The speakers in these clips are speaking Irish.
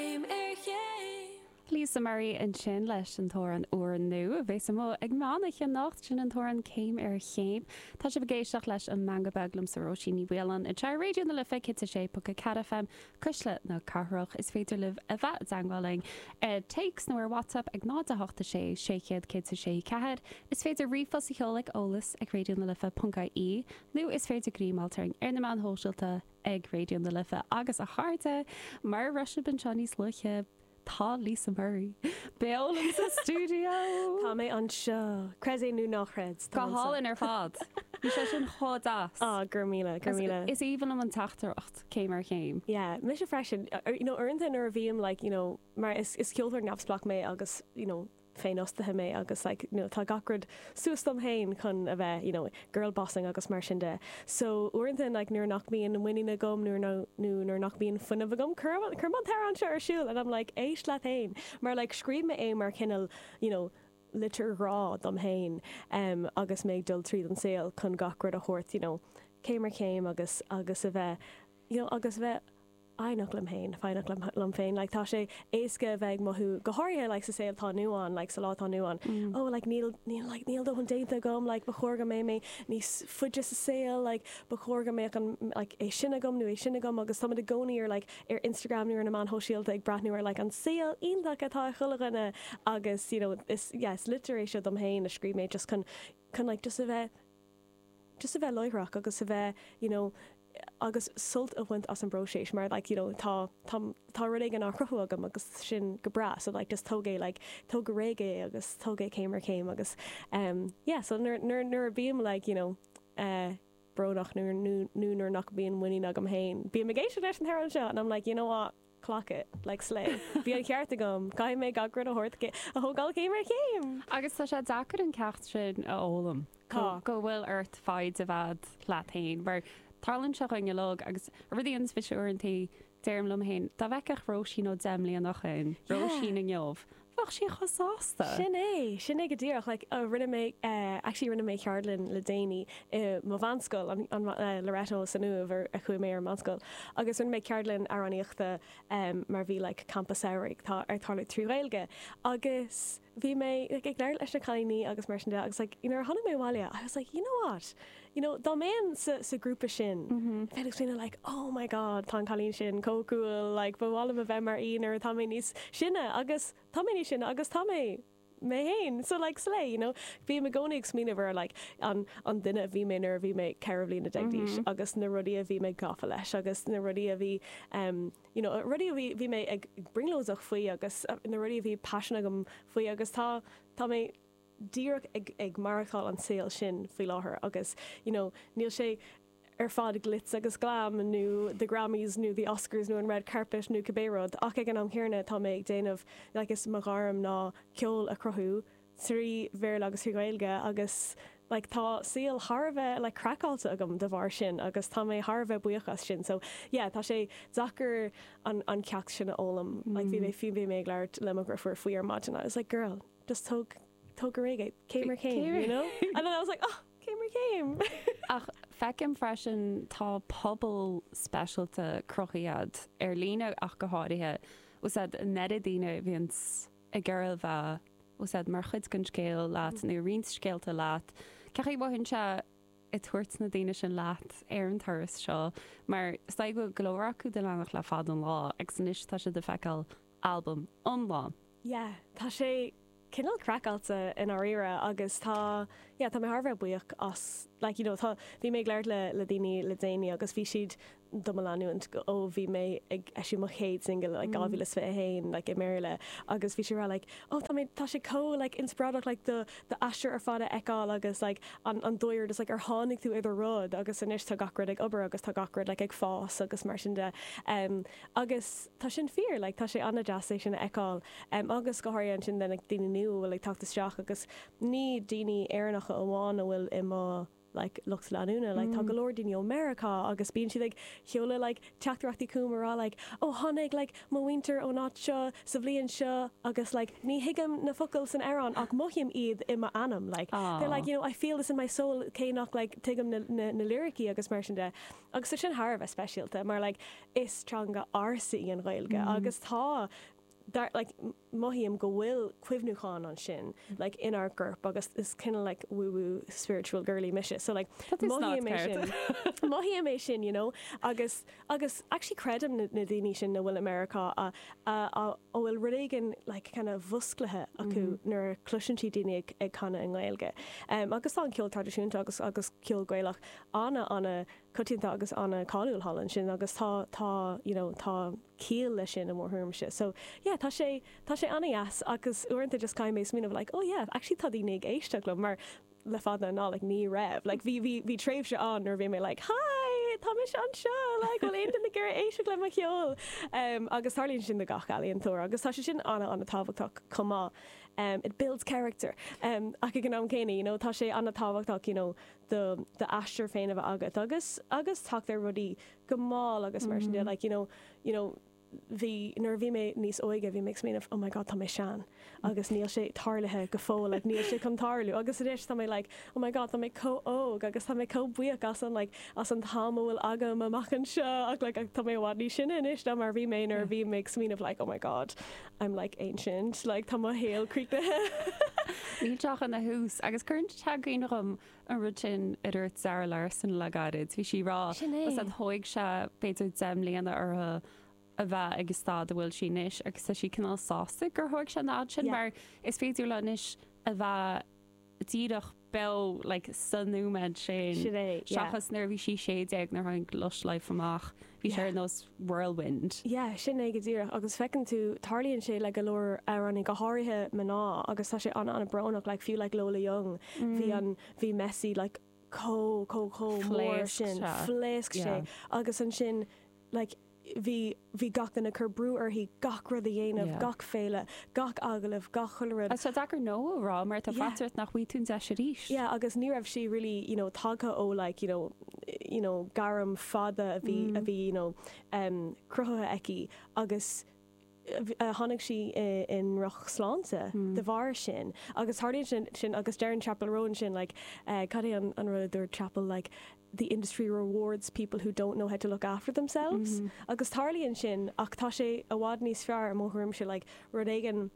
céim ar chéim. Lisa Murray ansin leis an t-amhrán úr nua a bheas amuigh ag meán oiche anocht, sin an t-amhrán céim ar chéim. Tá sibh ag éisteacht leis an Meangadh Beag liomsa Róisín Ní Mhaoláin ar Raidió na Life 106.4 FM, Cuisle na Cathrach. Is féidir libh a bheith i dteangmháil linn ar téacs nó ar WhatsApp ag 0 8 6 600 1064. Is féidir ríomhphost a sheoladh chuig eolas ag raidió na life ponc ie nó is féidir greim a fháil orainn ar na meáin shóisialta, ag Raidió na Life agus a chairde, mar a bhrisfidh anseo níos luaithe, tá Lisa Murray beo liom sa stiúideo! Tá mé anseo, creid é nó ná chreid, tá mé anseo. Go hálainn ar fad! Bhí sé sin chomh deas! Aw, go raibh míle, go raibh míle. Is aoibhinn liom an teachtaireacht, céim ar chéim. Yeah, mise freisin. You know, uaireanta nuair a bhím like, you know, mar is ceoltóir neamhspleách mé agus, you know, féinfhostaithe mé agus like you know tá gach rud suas dom féin chun a bheith you know girl bossing agus mar sin de so uaireanta like nuair nach mbíonn muinín agam nuair nó nó nuair nach mbíonn fuinneamh agam cuirim cuirim an t-amhrán seo ar siúl and I'm like éist leat féin mar like scríobh mé é mar chineál you know litir ghrá dom féin em agus mé ag dul tríd an saol chun gach rud a thabhairt you know céim ar chéim agus agus a bheith you know agus a bheith fhoighneach liom féin, foighneach liom liom féin like tá sé éasca a bheith ag mothú go háirithe like sa saol atá inniu ann like sa lá atá inniu ann oh like níl níl like níl dóthain déanta agam like ba chóir go mbeidh mé níos faide sa saol like ba chóir go mbeadh an like é sin agam nó é sin agam agus táimid i gcónaí ar like ar Instagram nó ar na meáin shóisialta ag breathnú ar like an saol iontach atá ag chuile dhuine agus you know is yeah is litir é seo dom féin a scríobh mé just chun chun like just a bheith just a bheith láithreach agus a bheith you know agus sult a bhaint as an bpróiseas mar like you know tá tá tá rud éigin á chruthú agam agus sin go breá so like just tóg é like tóg go réidh é agus tóg é céim ar chéim agus um yeah so nuair nuair nuair a bím like you know uh, brónach nó nuair nach mbíonn muinín agam féin bím ag éisteacht leis an amhrán seo and I'm like you know what clock it, like slay. Bhí an cheart agam, caithfidh mé gach rud a thabhairt a thógáil céim ar chéim! Agus tá sé deacair an ceacht sin a fhoghlaim, Tá. go bhfuil ort foighid a bheith agat leat fhéin, mar tarlaíonn sé chugainn uilig, agus rudaí ins bhfis uaireantaí, deirim liom fhéin, dá bhfeicfeadh Róisín ó deich mbliana ó shoin, Yeah! Róisín inniu, bheadh sí chomh sásta. Sin é, sin é go díreach. Like, rinne mé, actually rinne mé ceardlann le déanaí i mo mheánscoil, an, an Loreto san Uaimh ar a chuaigh mé ar an mheánscoil, agus rinne mé ceardlann amhránaíochta mar bhí like campa samhraidh ag tarlú trí Ghaeilge agus bhí mé like ag labhairt leis na cailíní agus mar sin de agus like nuair a tháinig mé abhaile I was like, you know what? you know dá mbeinn sa sa grúpa sin bheinn ag smaoineamh like oh my god tá an cailín sin chomh cool like ba mhaith liom a bheith mar í nuair atá mé níos sine agus tá mé níos sine agus tá mé mé féin so like slay you know bím i gcónaí ag smaoineamh ar like an an duine a bhí mé nuair a bhí mé ceithre bhliana déag d'aois agus na rudaí a bhí mé gafa leis agus na rudaí a bhí em you know rudaí a bhí bhí mé ag brionglóideach faoi agus na rudaí a bhí paisean agam faoi agus tá tá mé díreach ag maireachtáil an saol sin faoi láthair agus you know níl sé ar fad glitz agus glam nó the Grammys nó the Oscars nó an red carpet nó cibé rud ach ag an am chéanna tá mé ag déanamh like is mo ghairm ná ceol a chruthú trí Bhéarla agus trí Ghaeilge agus like tá saol thar a bheith like craiceáilte agam de bharr sin agus tá mé thar a bheith buíoch as sin so yeah tá sé deacair an an ceacht sin a fhoghlaim like bhí mé bhí mé ag labhairt le mo dhriofúr faoi ar maidin I was like girl just tóg tóg go réidh é, céim ar chéim, you know? And then I was like, oh, céim ar chéim! Ach feicim freisin tá pobal speisialta cruthaithe agat ar líne ach go háirithe, a' sea an oiread daoine a bhíonns ag iarraidh a bheith úsáid mar chuid den scéal leat nó roinnt scéalta leat. Cén chaoi a mothaíonn sé ag tabhairt na daoine sin leat ar an turas seo mar is dóigh go bhfuil go leor acu do do leanacht le fad an lá agus anois tá siad ag feiceáil albam iomlán. yeah tá sé cineál craiceáilte i ndáiríre agus tá yeah tá mé thar a bheith buíoch as like you know tá bhí mé ag labhairt le le daoine le déanaí agus bhí siad do mo leanúint go ó bhí mé ag eisiúint mo chéad single like 2021 like i mBéarla agus bhí siad rá like oh tá mé tá sé chomh like inspioráideach like do do aistear ar fad a fheiceáil agus like an an dóigh ar just like ar tháinig tú ar do rud agus anois tá gach rud ag obair agus tá gach rud like ag fás agus mar sin de em agus Tá sin fíor, like tá sé an-deas é sin a fheiceáil em agus go háirithe ansin le like daoine nua a bhfuil ag teacht isteach agus ní daoine Éireannacha amháin a bhfuil i mo like lucht leanúna like tá go leor daoine ó Meiriceá agus bíonn siad ag seoladh like teachtaireachtaí chugam a rá like oh tháinig like mo mhuintir ón áit seo sa bhliain seo agus like ní thuigim na focail san amhrán ach mothaím iad i m'anam like they're like you know I feel this in my soul cé nach like tuigim na na na liricí agus mar sin de agus tá sin thar a bheith speisialta mar like Is teanga ársa í an Ghaeilge agus tá, dar, like mothaím go bhfuil cuimhniúchán ansin, like inár gcorp agus is kinda like woo woo spiritual girlie mise so like Tá tú sa gclub, mothaím é sin, ceart. mothaím é sin you know agus, agus actually creidim na, na daoine sin a bhfuil i Meiriceá a, a, a, a bhfuil rud éigin like kinda mhusclaithe acu nuair a chloiseann siad daoine ag, ag canadh i nGaeilge. Em, agus tá an ceol traidisiúnta agus, agus ceol Gaelach ana, ana, coitianta agus an-cháiliúil thall ansin agus tá, tá, you know, tá ciall leis sin i mo thuairimse. So, yeah, tá sé, tá sé an-deas agus uaireanta just caithfidh mé smaoineamh like, oh yeah, actually tá daoine ag éisteacht liom mar le fada an lá like ní raibh like bhí, bhí, bhí tréimhse ann nuair a bhí mé like hi, tá mise anseo like bhfuil aon duine ag iarraidh éisteacht le mo cheol? Em, agus tarlaíonn sin do gach ealaíontóir agus tá sé sin an, an-tábhachtach chomh maith. Em, it builds character. Em, ach ag an am céanna, you know, tá sé an-tábhachtach, you know, do d'aistear féin a bheith agat agus agus teacht ar rudaí go mall agus mar sin de like you know you know bhí nuair a bhí mé níos óige bhí mé ag smaoineamh oh my god tá mé sean agus níl sé tarlaithe go fóill like níl sé chun tarlú agus anois tá mé like oh my god tá mé chomh óg agus tá mé chomh buíoch as an like as an am a bhfuil agam amach anseo ach like tá mé i bhfad níos sine anois ná mar a bhí mé nuair a bhí mé ag smaoineamh like oh my god I'm like ancient, like tá mo shaol críochnaithe. Níl sé ach ina thús. Agus cuireann tú i gcuimhne dhom an rud sin a dúirt Zara Larsson le gairid. Bhí sí ag rá, ó thóig sé b'fhéidir deich mbliana uirthi a bheith ag an staid a bhfuil sí anois agus tá sí cineál sásta gur thóig sé an fhad sin mar is féidir léi anois a bheith díreach bheith like sa nóiméad sin Sin é, yeah. seachas nuair a bhí sí sé déag nuair a tháinig Lush Life amach bhí sé ar nós whirlwind. Yeah, sin é go díreach agus feiceann tú tarlaíonn sé le go leor amhránaí, go háirithe mná agus tá sé ana ana brónach like fiú like Lola Young bhí an, bhí Messi like chomh, chomh, chomh mór sin, phléasc sé, phléasc sé yeah. agus ansin like, bhí, bhí gach duine ag cur brú uirthi gach rud a dhéanamh, gach féile, gach agallamh, gach chuile rud. Tá sé deacair 'no' a rá mar tá faitíos ort nach bhfaighidh tú an deis arís. Yeah, agus ní raibh sí really, you know, tagtha ó like, you know, you know gairm fada a bhí, a bhí, you know, cruthaithe aici agus. tháinig sí i ndrochshláinte de bharr sin agus tarlaíonn sin agus deireann Chappell Roan sin like cad é an rud a dúirt Chappell like the industry rewards people who don't know how to look after themselves agus tarlaíonn sin ach tá sé i bhfad níos fearr i mo thuairimse like rud éigin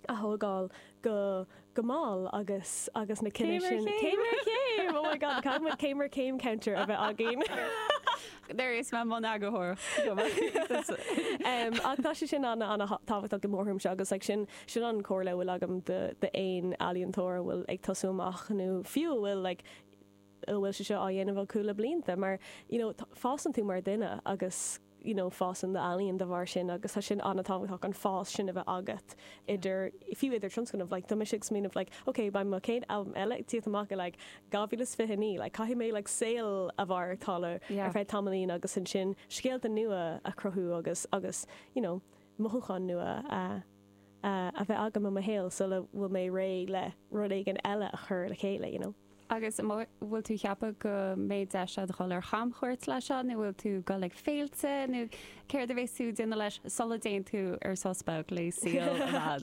a thógáil go go mall agus agus na cinneadh sin. Céim ar chéim! Céim ar chéim! Oh my God, caithfidh muid céim ar chéim counter a bheith againn. Déarfaidh mé le m'eagarthóir. Ach tá sé sin ana ana tábhachtach i mo thuairimse agus like sin sin an chomhairle a bhfuil agam do d'aon ealaíontóir a bhfuil ag tosú amach nó fiú a bhfuil like a bhfuil sé seo á dhéanamh acu le blianta mar you know fásann tú mar dhuine agus you know fásann do ealaín de bharr sin agus tá sin an-tábhachtach an fás sin a bheith agat idir fiú idir tionscnamh like tá mise ag smaoineamh like ok beidh mo chéad albam eile ag tíocht amach in like 2029 like caithfidh mé like saol a mhaireachtáil ar feadh tamaillín agus ansin scéalta nua a chruthú agus agus you know mothúcháin nua a a bheith agam i mo shaol sula bhfuil mé réidh le rud éigin eile a chur le chéile, you know. Agus an bhfuil tú cheapadh go mbeidh deis agat dhul ar chamchuairt leis seo, nó bhfuil tú dhul ag féilte, nó céard a bheas tú déanamh leis sula dtéann tú ar sos beag le saoire?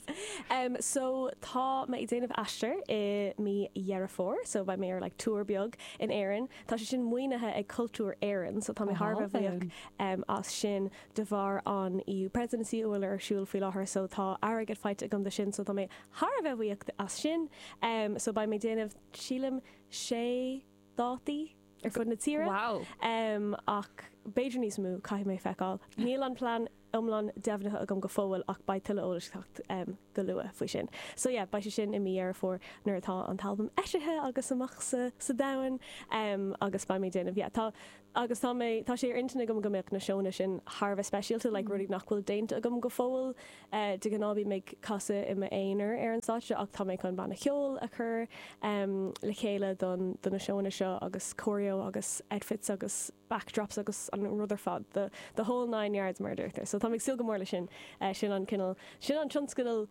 Em, so tá mé ag déanamh aistir i mí Dheireadh Fómhair, so beidh mé ar like tour beag in Éirinn. Tá sé sin maoinithe ag Cultúr Éireann, so tá mé thar a bheith buíoch, em, as sin. de bharr an EU Presidency a bhfuil ar siúl faoi láthair so tá airgead faighte agam dó sin so tá mé thar a bheith buíoch as sin. Em so beidh mé déanamh sílim sé dátaí ar fud na tíre Wow. em ach b'fhéidir níos mó caithfidh mé feiceáil. Níl an plean iomlán deimhnithe agam go fóill ach beidh tuilleadh eolais ag teacht em go luath faoi sin. So yeah beidh sé sin i mí Dheireadh Fómhair nuair atá an t-albam eisithe agus amach sa sa domhan. Em agus beidh mé déanamh yeah tá agus tá mé, tá sé ar intinn agam go mbeadh na seónna sin thar a bheith speisialta, like rudaí nach bhfuil déanta agam go fóill. De ghnáth bím ag casadh i m'aonar ar an stáitse ach tá mé chun banna ceoil a chur le chéile don, do na seónna seo agus choreo agus outfits agus backdrops agus an rud ar fad, the, the whole nine yards mar a deirtear. So tá mé ag súil go mór leis sin. Sin an cineál, sin an tionscnamh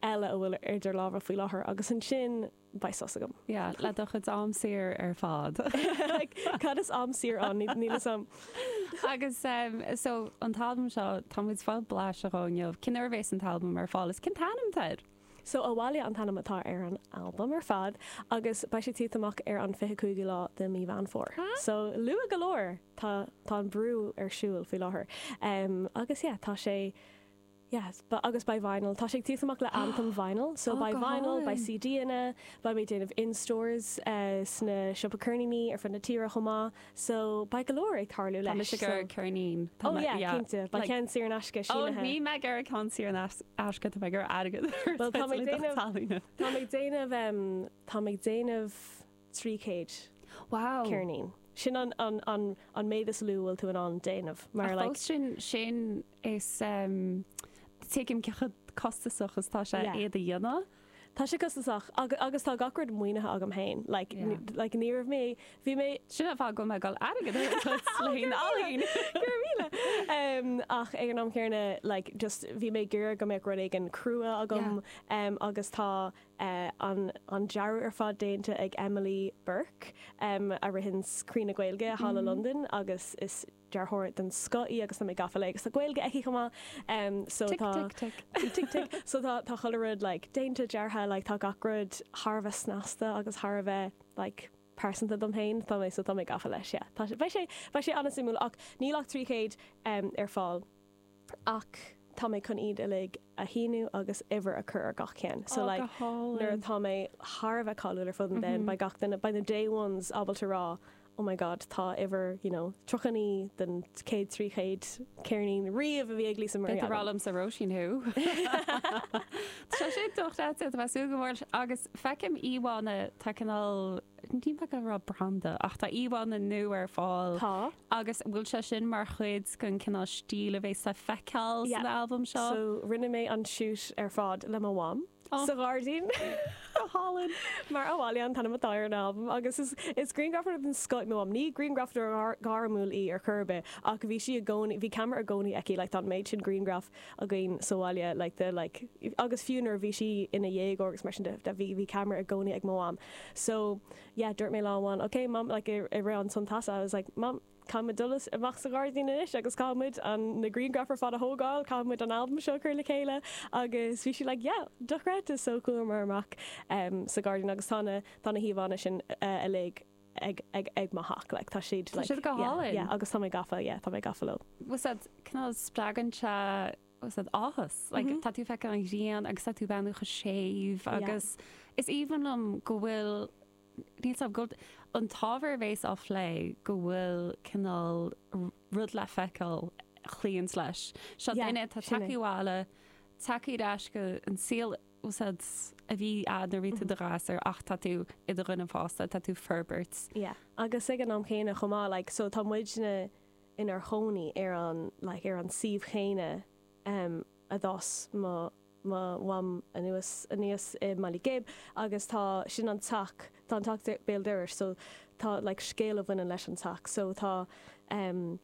eile a bhfuil idir lámha faoi láthair agus ansin, beidh sos agam. Yeah, le do chuid am saor ar fad. like, cad is am saor ann? Níl fhios a'm. Agus em, so, an t-albam seo, tá muid ag fáil blaiseadh dhó inniu. Cén uair a bhéas an t-albam ar fáil, is cén t-ainm atá air? So Abhaile an t-ainm atá ar an albam ar fad agus beidh sé ag tíocht amach ar an fiche cúigiú lá de Mí Mheán Fómhair. So, luath go leor! Tá, tá an brú ar siúl faoi láthair. Em, agus yeah, tá sé. Yes, but agus beidh vinyl. Tá sé ag tíocht amach le Anthem Vinyl. So Oh, beidh go vinyl, beidh hálainn. CD-anna, beidh mé déanamh in stores, eh, sna siopa ceirníní ar fud na tíre chomh maith. So beidh go leor ag tarlú Tá leis. mise ag So, iarraidh ceirnín. Tá oh mé- yeah, yeah, cinnte. Beidh like- ceann saor in aisce Oh, sínithe. níl mé ag iarraidh ceann saor in ais- aisce, tá mé ag iarraidh airgead. Well, tá mé ag déanamh- Tá mé ag déanamh, em, tá mé ag déanamh 300 Wow! ceirnín. Sin an an méid is lú a bhfuil tú in ann déanamh. Mar like. Fós sin sin is em tuigim cé chomh costasach is tá sé iad a dhéanamh. Tá sé costasach agus agus tá gach rud maoinithe agam féin like like ní raibh mé bhí mé Sin an fáth go bhfuil mé ag dul airgead a chur leis. Go raibh míle! Em ach ag an am céanna like just bhí mé ag iarraidh go mbeadh rud éigin crua agam em agus tá an dearadh ar fad déanta ag Emily Burke, a ritheann Croí na Gaeilge thall i Londain agus is dearthóir den scoth í agus tá mé gafa léi agus tá Gaeilge aici chomh maith so tá Tic tic tic. Tic tic tic. So tá tá chuile rud like déanta, deartha like tá gach rud thar a bheith snasta agus thar a bheith like pearsanta dom féin. Tá mé so tá mé gafa leis yeah. Tá sé beidh sé beidh sé an-suimiúil ach níl ach trí chéad ar fáil. ach tá mé chun iad uilig a shíniú agus uimhir a chur ar gach ceann. So like go hálainn. nuair atá mé thar a bheith cáiliúil ar fud an domhain, beidh gach duine, beidh na day ones ábalta a rá oh my god, tá uimhir you know 39 den chéad 300 ceirnín riamh a bhí ag Lisa Marie. Is breá liom sin Róisín thú! Tá sé dochreidte, tá mé ag súil go mór leis agus feicim íomhánna, tá cineál ní maith liom a rá branda ach tá íomhánna nua ar fáil Tá. Agus an bhfuil sé sin mar chuid den cineál stíl a bheas le feiceáil san albam seo? Yeah, so rinne mé an shoot ar fad le mo mham sa ghairdín. Go hálainn. Mar Abhaile an t-ainm atá ar an albam agus is grianghrafadóir den scoth í mo mham. Ní grianghrafadóir gairmiúil í ar chor ar bith ach bhí sí i gcónaí, bhí camera i gcónaí aici, like tá an méid sin grianghraf againn sa bhaile like de like agus fiú nuair a bhí sí ina déagóir agus mar sin de, bhí camera i gcónaí ag mo mham. So. yeah, dúirt mé lá amháin, ok mam, like i rith an tsamhraidh, I was like, mam, caithfimid dul amach sa ghairdín anois agus caithfimid an, na grianghraif ar fad a thógáil, caithfimid an albam seo a chur le chéile agus bhí sí like, yeah, dochreidte, so chuamar amach em sa ghairdín agus tá na, tá na híomhánna sin uilig ag, ag, ag mo theach like tá siad, tá siad like, yeah, go hálainn, yeah agus tá mé gafa, yeah, tá mé gafa leo. Bhuel, sea, cineál spreagann sé. Sé áthas. Like, tá tú ag feiceáil an ghrian agus tá tú ag breathnú chomh séimh agus is aoibhinn liom go bhfuil, níl a fhios agam, go bhfuil an t-ábhar a bheas á phlé, go bhfuil cineál rud le feiceáil a chloíonns leis. Seo duine atá ag teacht abhaile, ag teacht ar ais chuig an saol úd a bhí agat nuair a bhí tú i do ghasúr ach tá tú i do dhuine fásta, tá tú ag forbairt. Yeah. Agus ag an am chéanna chomh maith, like, so tá muidne inár gcónaí ar an like ar an suíomh chéanna a d'fhás mo mo mham anuas aníos i mBaile Ghib agus tá sin an teach tá an teach béal dorais so tá like scéal a bhaineann leis an teach so tá em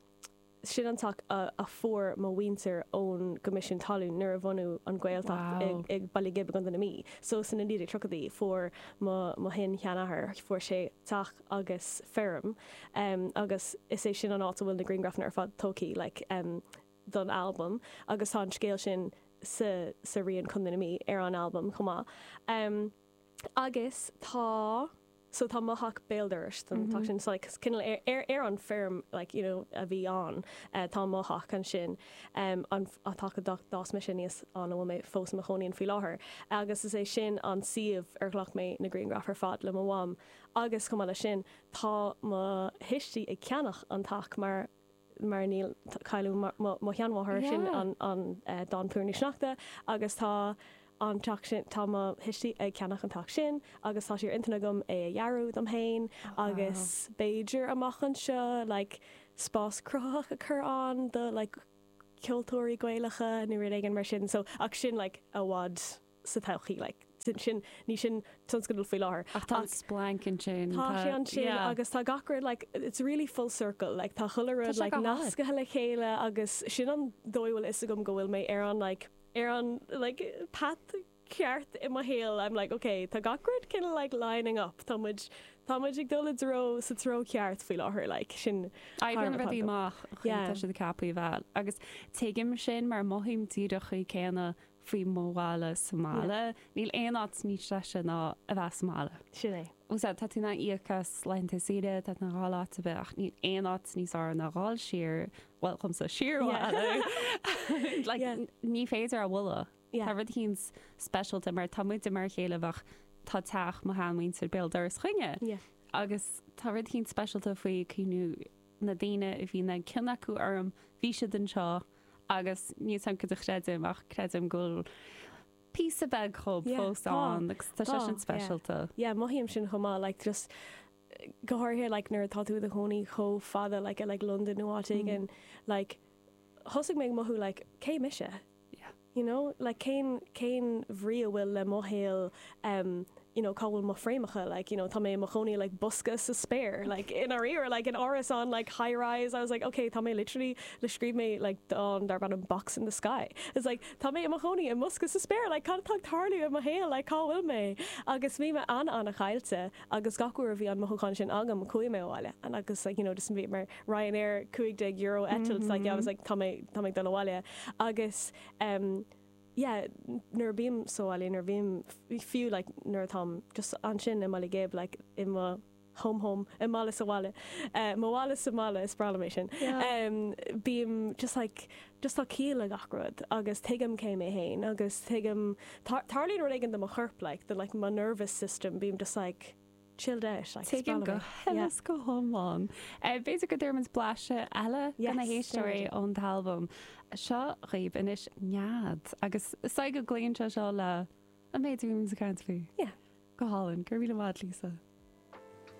sin an teach a a fuair mo mhuintir ón gCoimisiún Talún nuair a bunaíodh an Ghaeltacht i wow i Baile Ghib i gContae na Mí so san na 1930idí fuair mo mo shin-seanathair fuair sé teach agus feirm em agus is é sin an áit a bhfuil na grianghrafanna ar fad tógtha like em don albam agus tá an scéal sin sa sa rian Contae na Mí ar an albam chomh maith em agus tá so tá mo theach béal dorais don teach sin so like is cineál ar ar ar an feirm like you know a bhí ann eh tá mo theach ansin em an an teach a d'fhás d'fhás mise aníos ann a bhfuil mé fós i mo chónaí ann faoi láthair agus is é sin an suíomh ar ghlac mé na grianghraif ar fad le mo mham agus chomh maith leis sin Tá mo thuistí ag ceannach an teach mar mar nuair a cailleadh mo mo sheanmháthair, sin an an dán Púir na Seachta, agus tá an teach sin, tá mo thuistí ag ceannach an teach sin agus tá sé ar intinn agam é a dhearadh dom féin agus b'fhéidir amach anseo like spás cruthaitheach a chur ann do like ceoltóirí Gaelacha nó rud éigin mar sin so ach sin like i bhfad sa todhchaí. Sin, ní sin tionscadal faoi láthair, ach tá an splanc ansin, tá sé ansin agus tá gach rud, it's really full circle, tá chuile rud nascaithe le chéile agus sin an dóigh a bhfuil 'fhios agam go bhfuil mé ar an ar an path ceart i mo shaol, I'm like ok, tá gach rud kind of like lining up, tá muid tá muid ag dul i dtreo, sa treo ceart faoi láthair like, sin Oibríonn rudaí amach, má tá siad ceaptha a bheith agus tuigim sin mar mothaím díreach an céanna faoi mo mbaile sa mbaile. Níl aon áit níos deise ná a bheith sa mbaile. Sin é. Sea, tá tú in ann íoc as laethanta saoire, tá tú in ann dhul áit ar bith, ach níl aon áit níos fearr ná dul siar, bhuel, dhomsa, siar abhaile. Like, ní féidir é a bhualadh. Tá rud éigin speisialta, mar tá muide mar a chéile bheadh, tá teach mo shean-mhuintir béal dorais againne, agus tá rud éigin speisialta faoi cuimhniú, na daoine a bhí an-chion acu orm, bhí siad anseo agus níl mé cinnte céard é ach creidim go bhfuil píosa beag dhíobh fós ann agus tá sé sin speisialta. Yeah, mothaím sin chomh maith, like just go háirithe like nuair atá tú i do chónaí chomh fada like i like Londain nó áit éigin, like thosaigh mé ag mothú like cé mise? yeah you know like cén cén bhrí a bhfuil le mo shaol em you know cá bhfuil mo fhréamhacha like you know tá mé i mo chónaí i like bosca sa spéir like i ndáiríre like in árasán like high rise I was like okay tá mé literally like scríobh mé like dán darb ainm Box in the Sky it's like tá mé i mo chónaí i mbosca sa spéir like cad atá ag tarlú i mo shaol like cá bhfuil mé agus bhí mé ana ana chaillte agus gach uair a bhí an mothúchán sin agam chuaigh mé abhaile agus like you know just bhíomar Ryanair €15 eitilt so I was like tá mé tá mé ag dul abhaile agus em yeah nuair a bhím sa bhaile nuair a bhím fiú like nuair atáim just ansin i mBaile Ghib like i mo home home i mbaile sa bhaile eh mo bhaile sa mbaile is breá liom é sin yeah em bím just like just tá ciall le gach rud agus tuigim cé mé féin agus tuigim tar tarlaíonn rud éigin do mo chorp like the like mo nervous system bím just like chilled out, like Tuigim go huile is go hiomlán. B'fhéidir go dtabharfaimid blaiseadh eile do na héisteoirí ón t-albam seo dhaoibh anois, Nead, agus is dóigh go gcloíonn sé seo le an méid a bhí muid ag caint faoi. Yeah. Go hálainn. Go raibh míle maith agat, Lisa.